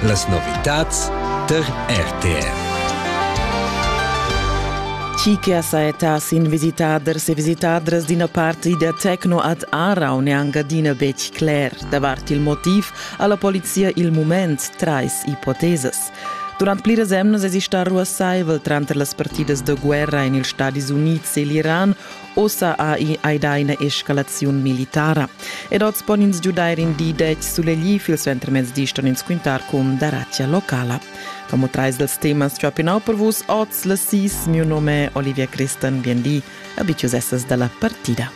Las novitads der RTR. Chi che ha saetà sin visitaders e visitadras d'ina parti da Tecno ad Aarau neanca adina betg cler davart il motiv ha la polizia il mument trais ipotesas. Durant pliras emnas es ista ruassaivel tranter las partidas da guerra en ils Stadis Unids e l'Iran Ossa ei ida ina escalaziun militara ed oz pon ins giudair in di detg sulegl il suentermezdi ston ins quintar cun daratia locala. Como trais dals temas chapinnau per vus oz las sis, mio nome Olivia Christen, bien di, abitius essas dalla partida.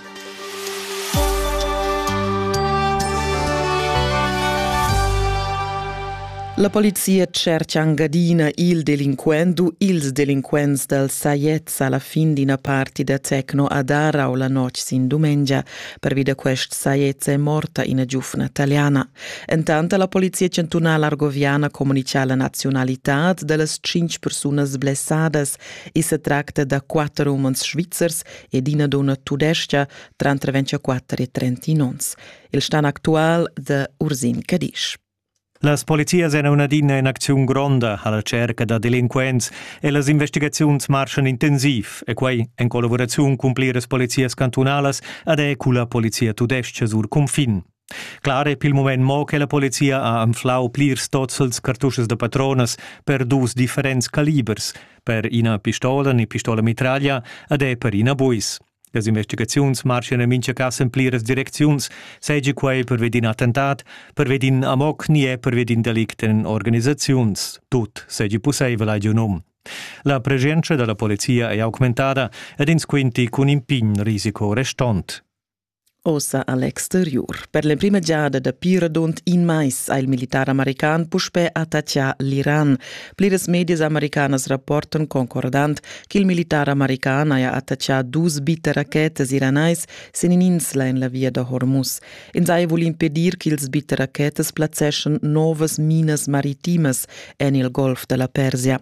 La polizia cerca angadina il delinquent u ils delinquents dal Sayet sa la fin d'ina parti da Tecno a Darau la notg sin dumengia. Pervi da quest saiezza è morta ina giufna taliana. Entant ha la polizia chantunala argoviana communitgà la nazionalitad da las tschintg persunas blessadas. I sa tracta da quatter umans svizzers ed ina donna tudestga, tranter 24 e 31 onns. Il stan actual da Ursin Cadisch. Las polizias èn adina in acziun gronda a la tscherca da delinquents e las investigaziuns marschan intensiv e quai en collavuraziun cun pliras polizias cantunalas ed è culla polizia tudestga sur cunfin. Clar è pil mument mo che la polizia ha anflau plirs tozzels cartuschas da patronas per dus differents calibers, per ina pistola ni pistola mitraglia ed è per ina buis. Las investigaziuns marschan en mintga cas en pliras direcziuns, seigi quei pervi d'in attentat, pervi d'in amok ni è pervi d'in delict en organisaziuns. Tut seigi pusseivel, hai giu num. La presenza dalla polizia è augmentada ed ins quinti cun in pign risico restont. Ossa a l'exteriur. Per l'emprima giada dapi radund in mais ha il militar american puspè attaccà l'Iran. Pliras medias americanas rapportan concordant che il militar american haja attaccà dus bitterachetas iranais sin in'insla en la via da Hormuz. Ins haja vul impedir ch'ils bitterachetas plazzeschan novas minas maritimas en il golf da la Persia.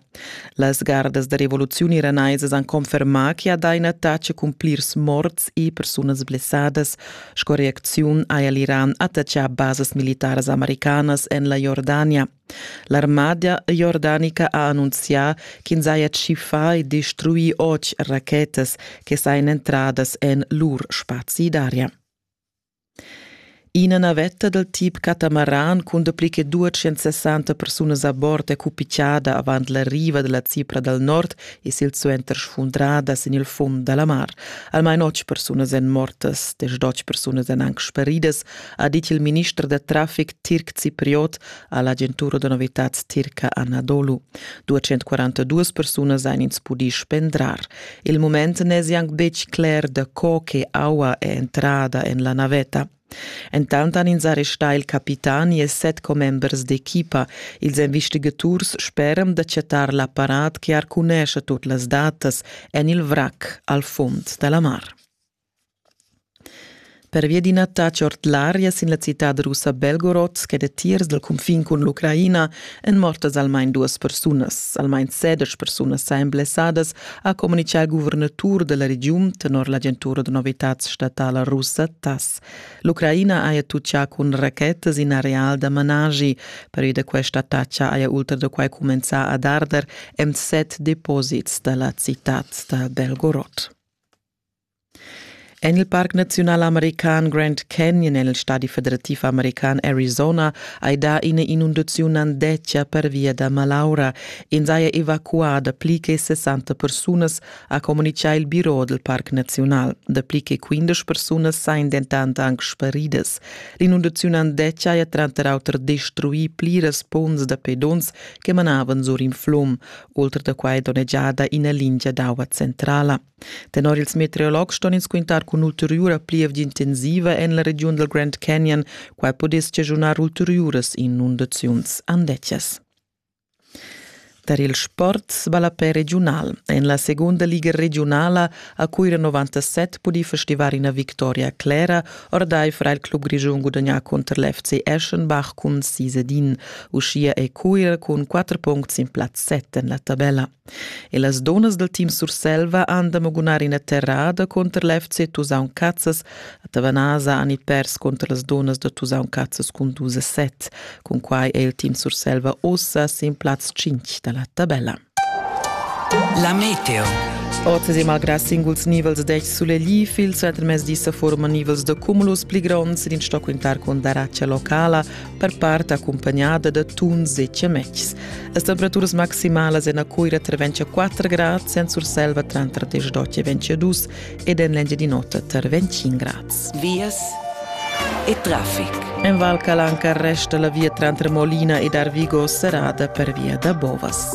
Las gardas da rivoluziun iranaisas han confermà che ha dà in attacc cun plirs morts e persunas blessadas sco reacziun haja l'Iran attachà basas militaras americanas en la Jordania. L'armada jordanica ha annunzià ch'ins haja tschiffà e destruì otg rachetas che sajan entradas en lur spazi d'aria. Ina navetta dal tip catamaran cun dapli che 260 persunas a bord è cupigiada avant la riva da la Cipra dal nord e silsuenter sfundrada sin il fund da la mar. Almain otg persunas èn mortas, desch persunas èn anc speridas, ha dit il minister da traffic tirc cipriot a l'agentura da novitads tirca Anadolu. 242 persunas han ins pudì spendrar. Il mument n'esi anc betg cler da co che aua è entrada en la navetta. Entant han ins arrestà il capitani e set commembers d'equipa. Ils investigaturs speran da chattar l'apparat che arcunescha tut las datas en il vrac al fund da la mar. Pervia d'in attach ord l'aria sin la citad russa Belgorod che datiers dal cunfin cun l'Ucraina èn mortas almain duas persunas. Almain sedesch persunas sajan blessadas, ha communitgà il guvernatur da la regiun tenor l'agentura da novitads statala russa TASS. L'Ucraina haja tutgà cun rachetas in areal da managi. Pervia da questa attacca haja ultra da quai cumenzà ad arder en set deposits da la citad da Belgorod. En il parc naziunal american Grand Canyon en il stadi federativ american Arizona hai dà ina inundaziun andetga pervia da malaura. In saja evacuà dapli che 60 persunas, ha communitgà il biro del parc naziunal. Dapli che 15 persunas sajan dentant anc sparidas. L'inundaziun andetga haja tranter auter destruì pliras ponns da pedons che manavan sur in flum. Oltre da quai donnegiada ina lingia d'aua centrala. Tenor ils meteorologs ston ins quintar cun ulteriura pliev intensiva en la regiun dal Grand Canyon. Quai pudess schagiunar ulteriuras inundaziuns andetgas. Tar il sport sballapè regiunal. En la segunda liga regiunala a Cuira 97 pudì festivar ina victoria clera ordaifer il club grischun gudagnà contr l'FC Eschenbach cun sis ed in. Uschia è Cuira cun quatter puncts sin plaz set en la tabella. E las dunnas dal team Surselva han da magunar ina terrada cunter l'FC Tusaun Cazzas. A Tavanasa han i pers cunter las dunnas da Tusaun Cazzas cun dus a set. Cun quai è il team Surselva ussa sin plaz 5 da la tabella. La meteo. Oz e malgrà singuls nivels degl sulegl il suenter mezdi sa forma nivels da cumulus pli gronds sin sto quintar con daracia locala per part accompagnada da tuns e ciametgs. Las temperaturas maximalas en a Coira tra 24 grads, en Surselva tra 32 e 22 ed en l'Engia di Nota tra 25 grads. Vias e traffic. En Val Calanca resta la via trantre Molina ed Arvigo serrada per via da Bovas.